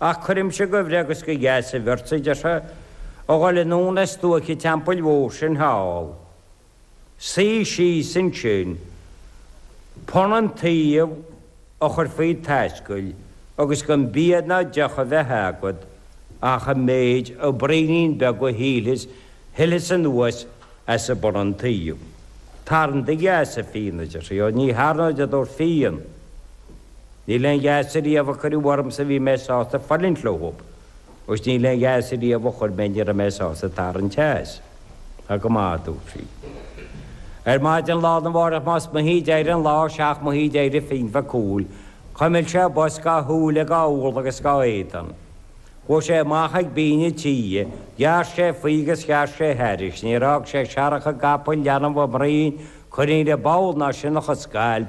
Ach cuirimse de bhreith agus de gheasaibh ortsa, a deir sé, a dhul anonn ar stuaic an teampaill mhóir sin thall. Suí síos ansin, punann tuí a chur faoi t'ascaill agus gan bia ná deoch a bheith agat ach an méid de bhraoinín beag a shilfeas shilfeas anuas as an bpunann tuí. Tarraing do gheasa, a Fionn, a deir sé, ó ní tharraingeod, a dúirt Fionn. Níl aon gheasa riamh a cuireadh ormsa bhí mé sásta fulaingt leo agus níl aon gheasa riamh a chuir mé ní raibh mé sásta tarraingt as. Tá go maith, a dúirt sí. Ar maidin lá arna mhárach más moch a d'éirigh an lá seacht moiche a d'éirigh Fionn Mhac Cumhaill. Chuimil sé bos dá shúile, dá urla agus dá éadan. Chuaigh sé amach ag binn an tí, ghearr sé faoi agus ghearr sé thairis. Níor fhág sé searrach i gcapall, leanbh i mbroinn, coinín i bpoll, ná sionnach i scailp.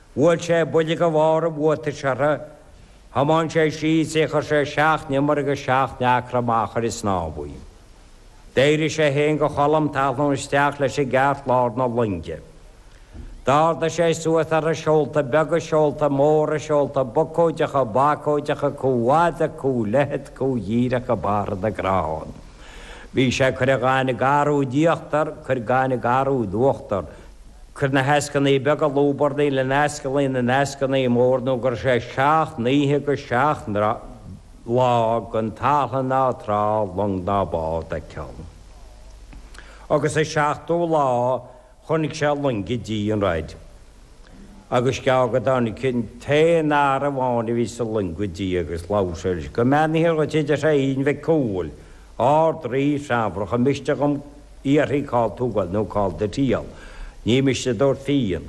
Bhuail sé buille de bharr a bhuataise uirthi, thiomáin sé síos í, chuir sé seacht n-iomaire agus seacht n-acra amach ar an snámh í. D'éirigh sé féin de chomhléim talmhan isteach leis i gceart lár na loinge. D'ardaigh sé suas uirthi seolta beaga, seolta móra, seolta bucóideacha, bacóideacha, comhfhada, comhleithead, comhdhíreacha, barra na gcrann. Bhí sé ag cur gaineamh garbh d'íochtar, ag cur gaineamh garbh d'uachtar. Cur na heascainní beaga ag lúbarnaíl in ascaillí na n-eascainní mór nó go raibh sé seacht n-oíche agus seacht lá gan talamh ná trá, long ná bád ag ceann. Agus sa seachtú lá chonaic sé loing ag tíocht an róid. Agus is gearr go dtáinig an t-aon fhear amháin a bhí sa loing go dtí é agus labhair sé leis, Go mbeannaítear dhuit, a deir sé, a Fhinn Mhic Cumhaill, Ard-Rí Teamhrach an miste dhom fiafraí cá bhfuil tú ag goil nó cá bhfuil do thriall. Ní miste a dúirt Fionn.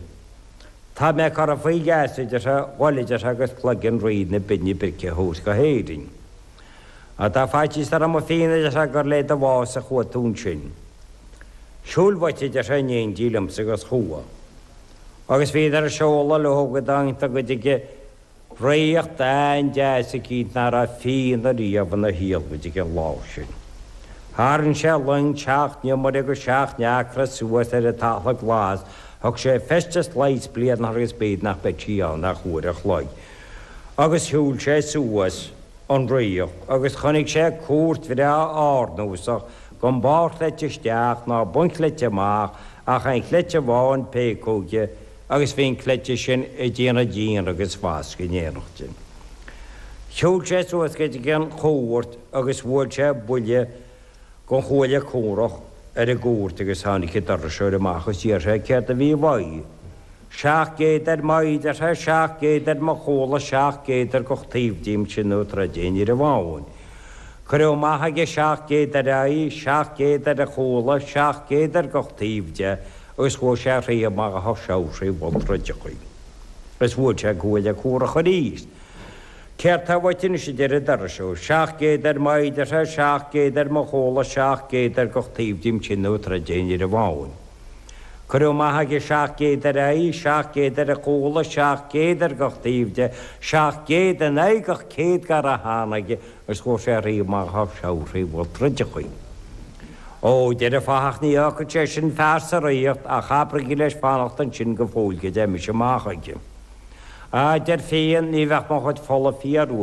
Tá mé curtha faoi gheasa, a deir sé, a dhul, a deir sé, agus cloigeann Rí na Binne Brice a thabhairt go hÉirinn. Má tá faitíos orm a Fionn, a deir sé, gur le do bhás a chuaigh tú ansin. Siúil uait, a deir sé, in éindí liomsa agus chuaigh. Agus bhíodar ag seoladh leo go dtángadar go Ríocht an-deas i gCíd nach raibh Fionn riamh ina hiarmhaid ag an lá sin. Tharraing sé an loing seacht n-iomaire agus seacht n-acra suas ar an talamh glas, thug sé feisteas lá is bliain uirthi agus bíodh nach mbeadh sí ann ach uair an chloig, agus shiúil sé suas an ríocht agus chonaic sé cúirt bhreá árnúsach gan barrchleite isteach ná bunchleite amach ach aon chleite amháin péacóige agus bhí an cleite sin ag déanamh díon agus fascadh in éineacht sin. Shiúil sé suas go dtí an chúirt agus bhuail sé buille den chuaille comhraic ar an gcúirt agus tháinig an doirseoir amach is d'iarr sé céard a bhí uaidh. Seacht gcéad ar m'fhéideartha, seacht gcéad ar mo chúla, seacht gcéad ar gach taobh díom sin nó troid aon fhir amháin. Cuireadh amach aige seacht gcéad ar a aghaidh, seacht gcéad ar a chúla, seacht gcéad ar gach taobh de. Is ghabh sé tríothu mar a ghabhfadh seabhac trí mholl truideachaí, is bhuail sé an cuaille comhraic aríst. Céard tá uait anois, a deir an doirseoir, seacht gcéad ar m'fhéideartha, seacht gcéad ar mo chúla, seacht gcéad ar gach taobh díom sin nó troid aon fhir amháin. Cuireadh amach aige seacht gcéad ar a aghaidh, seacht gcéad ar a chúla, seacht gcéad ar gach taobh de, seacht gcéad in aghaidh gach céad dhár tháinig, Is ghabh sé tríothu mar a ghabhfadh seabhac trí mholl truideachaí. Ó, a deir an fathach, ní fhágfaidh sé sin fear sa ríocht ach abraigí leis fanacht ansin go fóill go dté mise amach aige. Á, deir Fionn, ní bheadh mo chuid fola ag fuarú